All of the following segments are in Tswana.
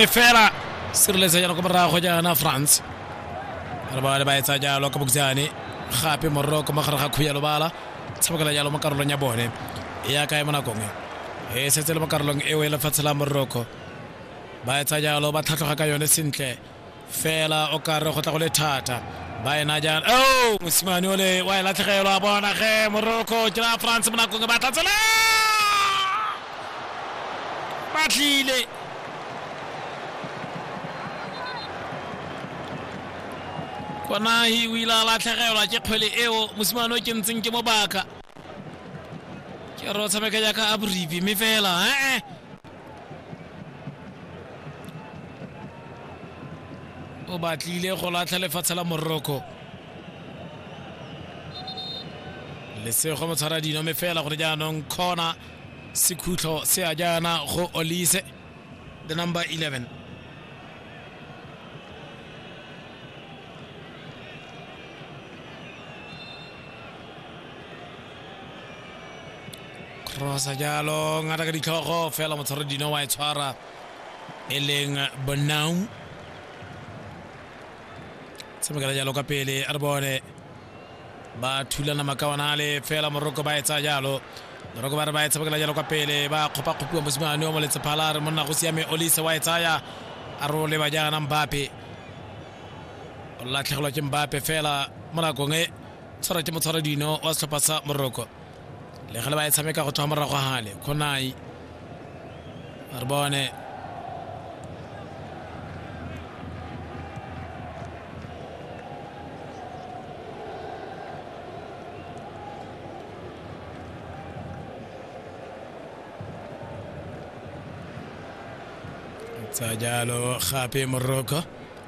fela sireletsa jalo ko morago jaana france re bale ba etsa jalo ka boksane gape morero ko mogare ga khubu ya lobala tshabakela jalo mo karolong ya bone e ya kae mo nakong e e setse le mo karolong eo e lefatshe la moroko ba etsa jalo ba tlhatlhoga ka yone sentle fela o kare go tla go le thata ba ena jana o mosimane ole wa e latlhegelwa a bona ge moroko ke la france mo nakong e batla tsela ba tlile konahi o ile a latlhegelwa ke kgwele eo mosimane o ke ntseng ke mo baka ke re o tshameka jaaka a boripi mme fela ee o batlile go latlha lefatshe la moroko lesego motshwara dino mme fela gore jaanong kgona Sekhutlho se a jaana go Olise, the number 11. Crossa jalo ngata ka ditlhogo fela motshwaro dino wa e tshwara e leng Bonang. Tshamekela jalo ka pele a re bone ba thulana makawana a le fela moroko ba etsa jalo moroko ba re ba e tshabakela jalo kwa pele ba kgopakgopiwa mosimane o moletsephala re monna go siame olise wa e tsaya a re o leba jaana mbape o latlhegelwa ke mbape fela mo nakong e tshwara ke motshwara dino wa setlhopha sa moroko le ge le ba e tshameka go tswa morago gale kgonai re bone tsa jalo gape moroko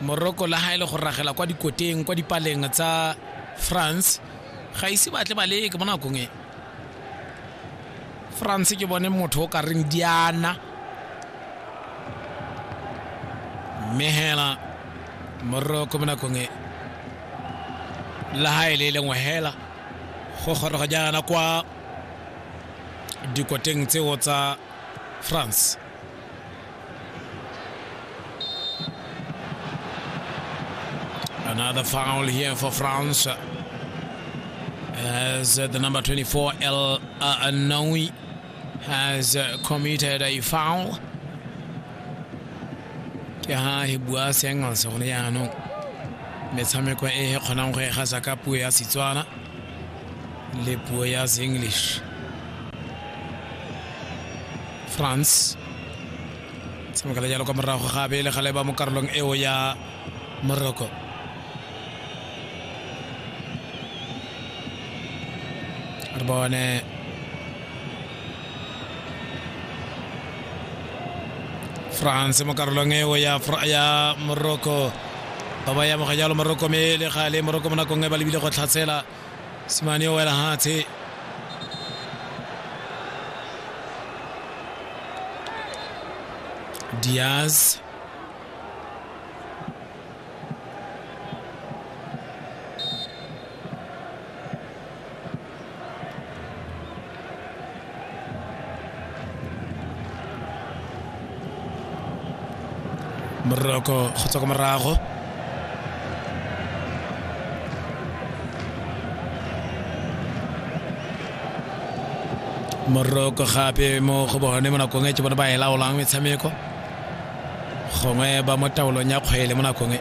moroko la ga e le go ragela kwa dikoteng kwa dipaleng tsa france ga ise batle ba leke mo nakong e france ke bone motho o ka reng diana mme hela moroko mo nakong e la ga e le e lengwe hela go goroga jaana kwa dikoteng tseo tsa france Another foul here for France. As uh, the number 24, El uh, Anoui, has uh, committed a foul. ke ha he bua se engels gone jaanong metshameko e e kgonang go e gasa ka puo ya setswana le puo ya English France tshamekela jalo kwa morago ga abele ga leba mo karolong eo ya Morocco re bone france mo karolong eo ya, ya morocco ba ba yamoga jalo morocco me le gale morocco mo nakong e ba lebile go tlhatsela simane o wela hatshe diaz moroko go tswa ko morago moroko gape mo go bone mo nakong e ke bone ba e laolang metshameko gongwe ba mo taolong ya kgwele mo nakong e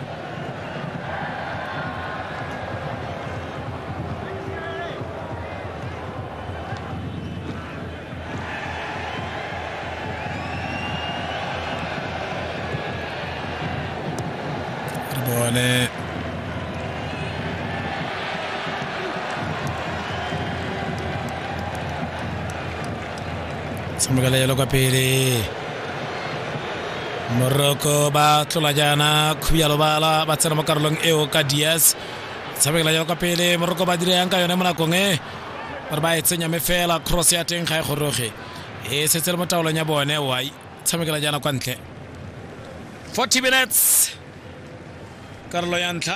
tshamekela yalo kwa pele moroko ba tlola jaana khuya lobala ba tsena mo karolong eo ka dias tshamekela yalo kwa pele moroko ba dira yang ka yone mo nakong e gore ba e tsenya me fela cross ya teng ga e goroge e setse le mo taolong ya bone wai tshamekela jaana kwa ntle 40 minutes karolo ya ntlha